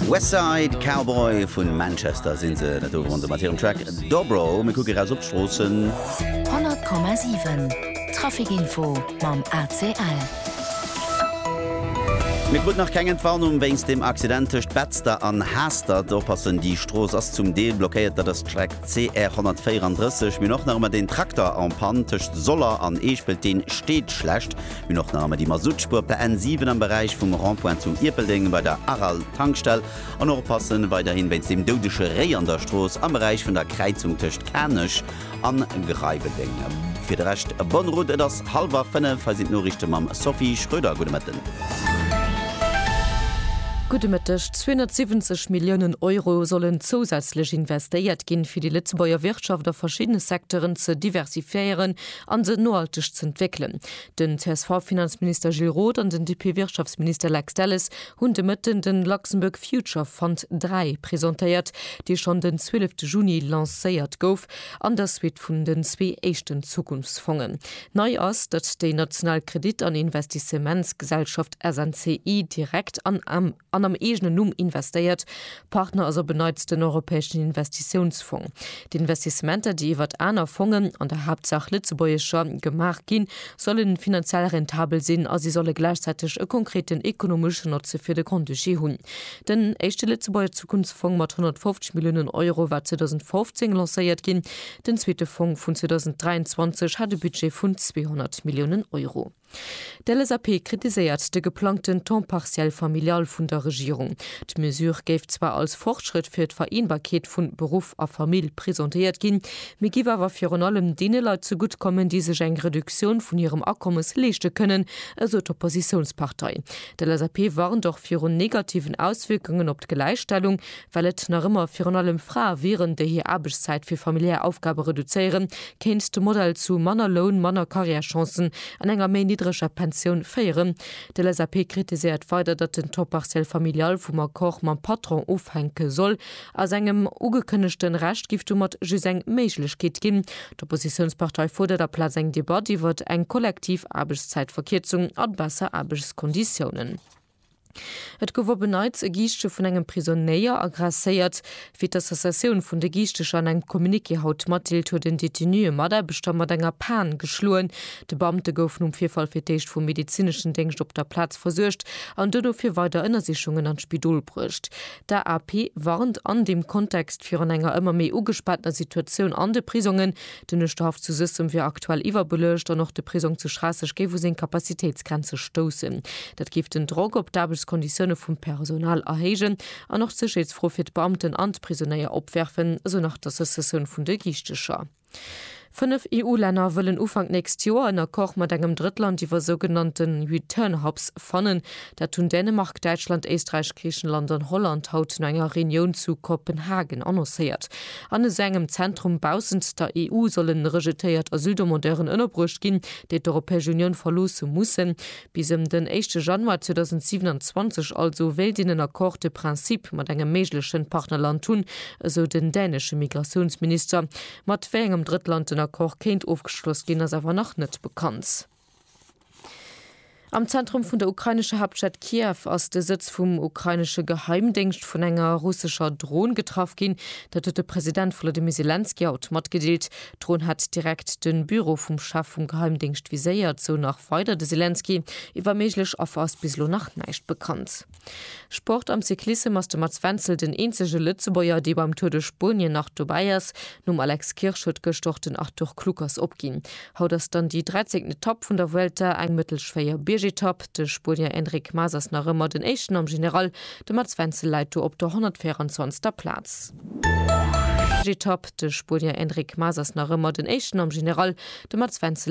West Side Cowboy vun Manchester sinn se dat do rondem mat hirem Track Dobro. Mir kucke raus op d'Stroossen. 100,7 Traficinfo mam ACL. Mir kruten nach keng Entwarnung wéinst dem Accident tëscht Betzder an Haastert. Oppassen, déi Strooss ass zum Deel blockéiert. Dat ass d'Streck CR 134. Mir hunn och nach ëmmer deen Trakter en panne tëscht Soller an Eeschpelt. Dee steet schlecht. Mir hunn och nach ëmmer déi Masuttspuer per N7 am Beräich vum Rond-point zum Ierpeldeng bei der Aral Tankstell an och oppassen weiderhin wéinst dem doudege Réi an der Strooss am Beräich vun der Kräizung tëscht Kanech an Greiweldeng. Fir de Rescht bonne route, et ass hallwer 5, hei sinn d'Noriichte mam Sophie Schröder. Gudde Mëtten. Gudde Mëtteg. 270 Milliounen Euro sollen zousätzlech investéiert ginn, fir déi Lëtzebuerger Wirtschaft a verschiddene Secteuren ze diversifiéieren, a se nohalteg ze entwéckelen. Den CSV-Finanzminister Gilles Roth an den DP-Wirtschaftsminister Lex Delles hunn de Mëtten den Luxembourg Future Fund 3 presentéiert, dee schonn den 12 Juni lancéiert gouf, an der Suite vun den zwee éischten Zukunftsfongen. Nei ass, datt déi national Kredit an Investissementsgesellschaft SNCI direkt an am. an am eegenen Numm investéiert. Partner ass op en Neits den Europäeschen Investitiounsfong. D'Investissementer, déi iwwert aner Fongen, an der Haaptsaach lëtzebuergescher, gemaach ginn, solle finanziell rentabel sinn a si solle gläichzäiteg e konkreten ekonomeschen Notze fir de Grand-Duché hunn. Den éischte Lëtzebuerger Zukunftsfong mat 150 Milliounen Euro war 2015 lancéiert ginn. Den zweete Fong vun 2023 hat e Budget vun 200 Milliounen Euro. D'LSAP kritiséiert de geplangten Temps partiel familial vun der Regierung. D'Mesure géif zwar als Fortschrëtt fir d'Vereenbarkeet vu Beruff a Famill presentéiert ginn, mee giff awer virun allem deene Leit zegutt kommen, déi sech eng Reduktioun vun hirem Akommes leeschte kënnen, esou d'Oppositiounspartei. D'LSAP warnt och virun negativen Auswierkungen op d'Gläichstellung, Well et nach ëmmer virun allem Frae wieren, déi hir Aarbechtszäit fir familiär Aufgabe reduzéieren, kéint de Modell zu manner Loun, manner Carrièrechancen an enger méi niddreger Pensioun féieren. De LSAP kritiséiert weider, datt den Temps partiel familial vum Accord mam Patron ofhänke soll. A sengem ugekënnegte Recht géif domat just eng Méiglechkeet ginn. D'Oppositiounspartei fuerdert aplaz eng Debatt iwwert eng kollektiv Aarbechtszäitverkierzung an besser Aarbechtskonditiounen. Et gouf op en Neits e Giischtje vun engem Prisonnéier agresséiert. Wéi d'Associatioun vun de Giischteger an engem Communiqué haut matdeelt, huet en Detenu e Mataarbechter mat enger Pan geschloen. De Beamte gouf nom Virfall fir d'éischt vum medezineschen Déngscht op der Plaz versuergt an duerno fir weider Ënnersichungen an d'Spidol bruecht. D'AAP warnt an deem Kontext virun enger ëmmer méi ugespaanter Situatioun an de Prisongen, Den Uerschterhaff zu Suessem wier aktuell iwwerbeluecht an och de Prisong zu Schraasseg géif u seng Capacitéitsgrenze stoussen. Dat géif den Drock op d'Aarbechtskonditioune vum Personal erhéijen an och d'Sécherheetsfro fir d'Beamten an d'Prisonéier opwerfen, esou nach d'Associatioun vun de Giichtecher. Fënnef EU-Länner wëllen Ufank nächst Joer en Accord mat engem Drëttland iwwer sougenannte Return-Hubs fannen. Dat hunn Dänemark, Däitschland, Éisträich, Griichenland an Holland haut no enger Reunioun zu Kopenhagen annoncéiert. An esou engem Zentrum baussent der EU sollen rejetéiert Asyldemandeuren ënnerbruecht ginn, déi d'Europäesch Unioun verloosse mussen. Bis ëm den éischte Januar 2027 also wéilt een en Accord de principe mat engem méiglechen Partnerland hunn, esou den dänesche Migratiounsminister. Mat wéi engem Drëttland den Accord kéint ofgeschloss ginn, ass awer nach net bekannt. Am Zentrum vun der ukrainescher Haaptstad Kiew ass de Sëtz vum ukrainesche Geheimdéngscht vun enger russescher Dron getraff ginn. Dat huet de President Volodymyr Selenskyj haut matgedeelt. D'Dron hätt direkt de Büro vum Chef vum Geheimdéngscht viséiert, sou nach weider de Selenskyj. Iwwer méiglech Affer ass bis elo nach näischt bekannt. Sport Am Cyclissem ass de Mats Wenzel den eenzege Lëtzebuerger, dee beim Tour de Spuenien nach dobäi ass. Nom Alex Kirsch huet gëscht och den Arthur Kluckers opginn. Haut ass dann déi 13. Etapp vun der Vuelta, eng mëttelschwéier Biergetapp. De Spuenier Enric Mas ass nach ëmmer den Éischten am General. De Mats Wenzel läit do op der 124. Plaz. Etapp. De Spuenier Enric Mas ass nach ëmmer den Éischten am General. De Mats Wenzel.